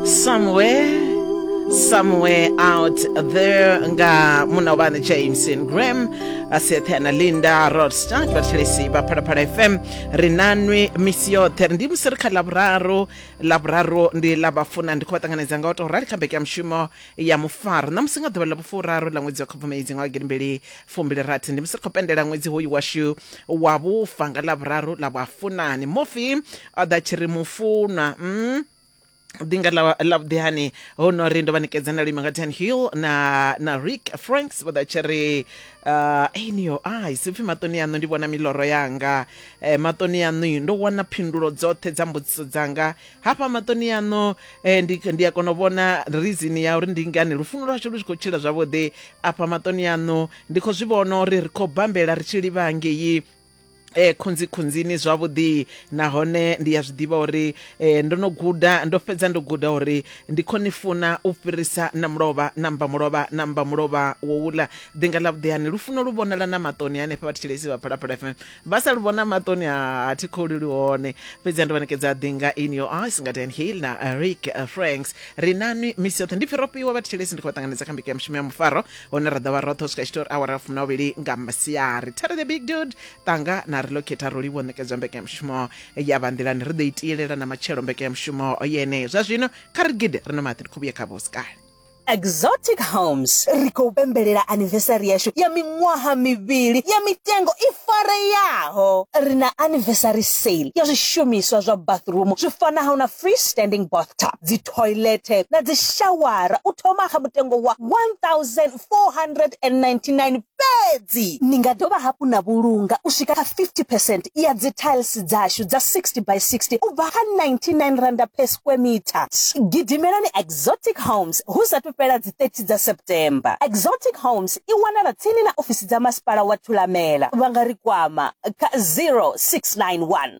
somewhere somewhere out there nga muna ubani james and graham asiethe na linda rodstart vhathelesi vha phalaphala fm ri nanwi misi yoṱhe ndi musi ri kha lavhuraru lavhuraru ndi la vhafuna ndi khou vha ṱanganedza nga u tou rali kha mbeke ya mushumo ya mufaro na musi nga ḓuvha ḽa vhufuraru ḽa ṅwedzi wa khubvumedzi nga wagidi mbili fumbili rathi ndi musi ri khou pendela ṅwedzi hoyu washu wa vhufa nga lavhuraru ḽa vhafunani mufi a ḓa tshi ri mufunwa mm. dinga la la vhudihani ho no ri ndo vha nikedza na lima nga ten hill na na rick franks vha ḓa tshi ri uh, in your eyes ipfi maṱoni yaṋu ndi vhona miloro yanga eh, maṱoni yaṋu ndo wana phindulo dzoṱhe dza mbudziso dzanga hafha maṱoni yaṋu eh, ndi, ndi a kona u vhona rizini ya uri ndi ngani lufuno lwashu lu tshi khou tshila zwavhuḓi afha maṱoni yaṋu ndi khou zwi vhona uri ri khou bambela ri tshi livha ngei e khunzi khunzini zwavhuḓi nahone ndi ya zwiḓivha uri e, ndo no guda ndo fhedza ndo guda uri ndi khou ni funa u fhirisa na mulovha na mba mulovha na mba mulovha wo wula ḓinga ḽa vhuḓihani lufuno lu vhonala na maṱoni hanefha vha thetshelesi vha phalaphala fm vha sa lu vhona maṱoni a thi khou luli hone fhedzi ndo vha ṋekedza ḓinga in your eyes nga dan hill na rick franks ri nanwi misi yoṱhe ndi pfi ro fhiwa vha thetshelesi ndi khou vha ṱanganedza kha mbiko ya mushumo ya mufaro hune ra ḓo vha roṱhe u swika tshitori awara fumi na vhili nga masiari terry the big dude tanga na relocata rolivo ṋekedzwa mbekanyamushumo ya vha nḓilani ri ḓo itiyelela na matshelo mbekanyamushumo yeneyo zwa zwino kha ri gide ri no maḓi ri khou vhuye kha vhosikale Exotic Homes ri khou pembelela anniversary yashu ya miṅwaha mivhili ya mitengo i fareyaho. Ri na anniversary sale ya zwishumiswa zwa bathroom zwi fanaho na freestanding bathtub, dzi thoilethe na dzishawara u thoma kha mutengo wa R1,499 fhedzi. Ni nga dovha hafhu na vhulunga u swika kha 50 percent ya dzithailisi dzashu dza 60 by 60 u bva kha R99 per square metre. Gidimelani Exotic Homes hu sa athu fhela dzi 30 dza September. Exotic Homes i wanala tsini na ofisi dza Masipala wa Thulamela. Vha nga ri kwama kha 0691.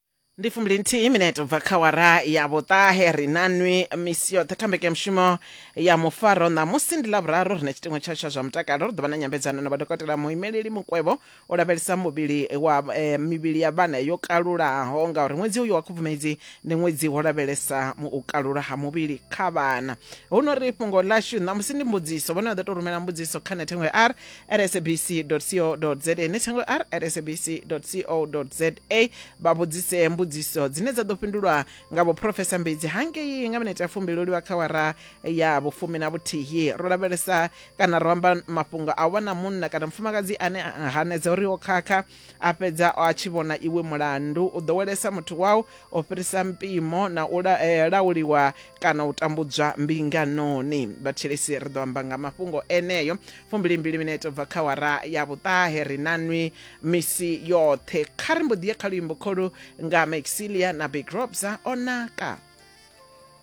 ndi fumbili nthihi minete ubva kha wara ya vhuṱahe ri na nwi misi yoṱhe kha mbekanyamushumo ya mufaro ṋamusi ndi lavhuraru ri na tshiṱingo tsha tsha zwa mutakalo ri ḓo vha na nyambedzano na vhadokotela muimeleli mukwevho o lavhelesa muvhili wa eh, mivhili ya vhana yo kalulaho ngauri ṅwedzi uyu wa khubvumedzi ndi ṅwedzi wo lavhelesa mu- u kalula ha muvhili kha vhana hu no ri fhungo ḽashu ṋamusi ndi mbudziso vhone vha ḓo tou rumela mbudziso kha nethengo ya r at sabc co za ne thangwe r at sabc co za vha vhudzise mbudziso dzine dza ḓo fhindulwa nga vhuprofesa mbedzi hangei nga minete ya fumbi lo liwa kha wara ya vhufumi na vhuthihi ro lavhelesa kana ro amba mafhungo a wana munna kana mufumakadzi ane a hanedza uri o khakha a fhedza a tshi vhona iwe mulandu u ḓowelesa muthu wau o fhirisa mpimo na u la, eh, lauliwa kana u tambudzwa mbinganoni vhathetshelesi ri ḓo amba nga mafhungo eneyo fumbilimbili minete u bva kha wara ya vhuṱahe ri na nwi misi yoṱhe kha ri mbo ḓi ye kha luimbo kholu nga maxilia na big robsa o naka